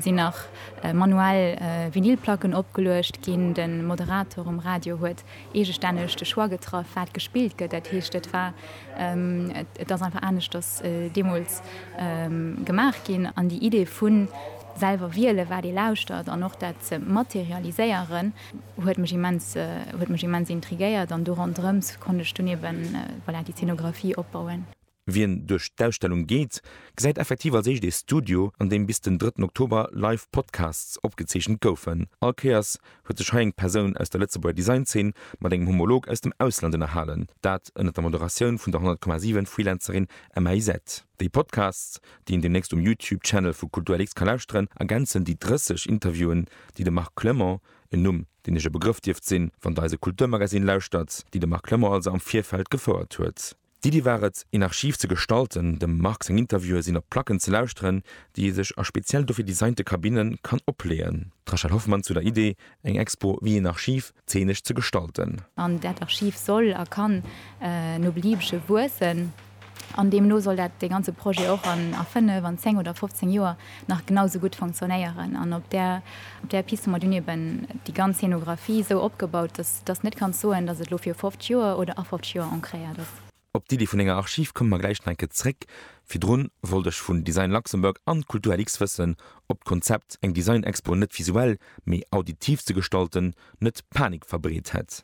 Sinn nach manuell Vinylplacken opgeluecht ginn. De Moderator um Radio huet eegestänneg de Choix getraff, wat gespillt gëtt. Dat heescht, et war, et ass einfach aneschters deemools gemaach ginn. An déi Idee vu selwer wielen, wat ee lauschtert an och dat ze materialiséieren, huet mech immens, huet mech immens intriguéiert. An do ronderëms konnt ech dunn eeben, voilà, déi Zeenografie opbauen. Wien duerch d'Ausstellung geet, gesäit effektiv als éischt ee Studio, an deem bis den drëtten Oktober live Podcasts opgezeechent goufen. All Kéiers huet sech hei eng Persoun aus der Lëtzebuerger Design-Zeen mat engem Homolog aus dem Ausland ënnerhalen, dat ënnert der Moderatioun vun der 100,7 Freelancerin Emma Isette. Déi Podcasts, déi een deemnächst um YouTube-Channel vu KulturLX ka lauschteren, ergänzen déi 30 Interviewen, déi de Marc Clement, en Numm, deen lech e Begrëff dierft sinn, wann Der eise Kulturmagazine lauschtert, déi de Marc Clement also am Virfeld gefouert huet. D'Iddi war et, een Archiv ze gestalten, dem Marc seng Interviewe sinn op Placken ze lauschteren, déi ee sech a speziell dofir designte Kabinne kann opleeën. D'Rachel Hoffmann zu der Iddi, eng Expo wéi een Archiv, zeenesch ze gestalten. An dat Archiv soll a kann no Beliebege wuessen. An deemno soll dat, dee ganze Projet och a fënnef, an zéng oder fofzéng Joer nach genau sou gutt fonctionnéieren an op där op där Piste hun mer dun eben déi ganz Scénographie sou opgebaut dass dass net kanns soen dass et lo fir 50 Joer oder a 50 Joer ancréiert ass. Op d'Iddi vun enger Archiv komme mer gläich nach eng Kéier zréck. Virdrun wollt ech vun Design Luxembourg an Kultur LX wëssen op d'Konzept eng Design Expo net visuell mee auditiv ze gestalten net Panik verbreet hätt.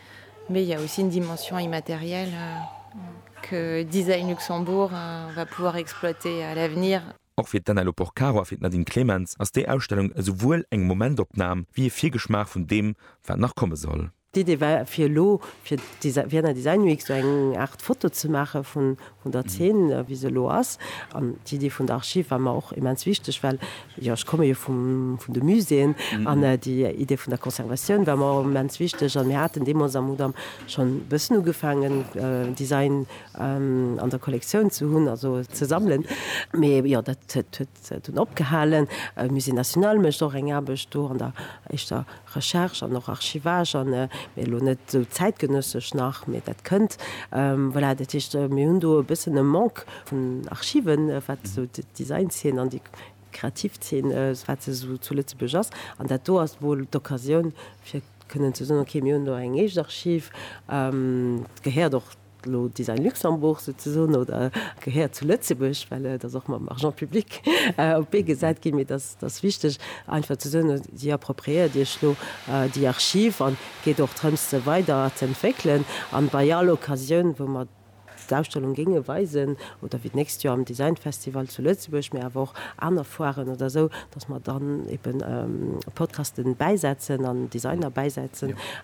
Mais il y a aussi une dimension immatérielle que Design Luxembourg va pouvoir exploiter à l'avenir. Och fir d'Anne-Laure Porcaro a fir d'Nadine Clemens ass déi Ausstellung esouwuel eng Momentopnam wéi e Virgeschmaach vun deem, wat nach komme soll. D'Idee war fir elo fir d'Vie-na Design Week esou eng Aart Foto ze maache vun der Zeen wéi se elo ass. An d'Idee vun der Archiv war mer och immens wichteg, well jo ech komme jo vum vun de Muséeën an déi Idee vun der Conservatioun war mer immens wichteg. An mir haten deemools am Mudam schonn e bëssen ugefaangen Design an der Kollektioun ze hunn, also ze sammelen. Mee jo dat huet dunn opgehalen. Musée national mécht och eng Aarbecht do an der éischter Recherche an och Archivage an, mee elo net esou zäitgenössesch nach, mee dat kënnt. Voilà, dat heescht, mir hunn do e bëssen e Manque vun Archiven, wat esou d'Design-Zeen an déi kreativ Zeen, wat se esou zu Lëtzebuerg ass. An dat do ass wuel d'Occasioun, fir kënnen ze soen, okay, mir hunn do eng eescht Archiv, d'gehéiert och, D'Lo Design Luxembourg souzesoen oder gehéiert zu Lëtzebuerg, well et ass och mam Argent public op d'Bee gesat ginn. Mee et ass wichteg einfach ze soen, Dir appropriéiert Iech elo déi Archiv an et geet och drëms se weider ze entwéckelen an bei all Occasioun wou mer d'Ausstellung géinge weisen oder wéi d'nächst Joer am Design Festival zu Lëtzebuerg, mee awer och aner Foiren oder esou, datt mer dann eben Podcasten bäisetzen an Designer bäisetzen.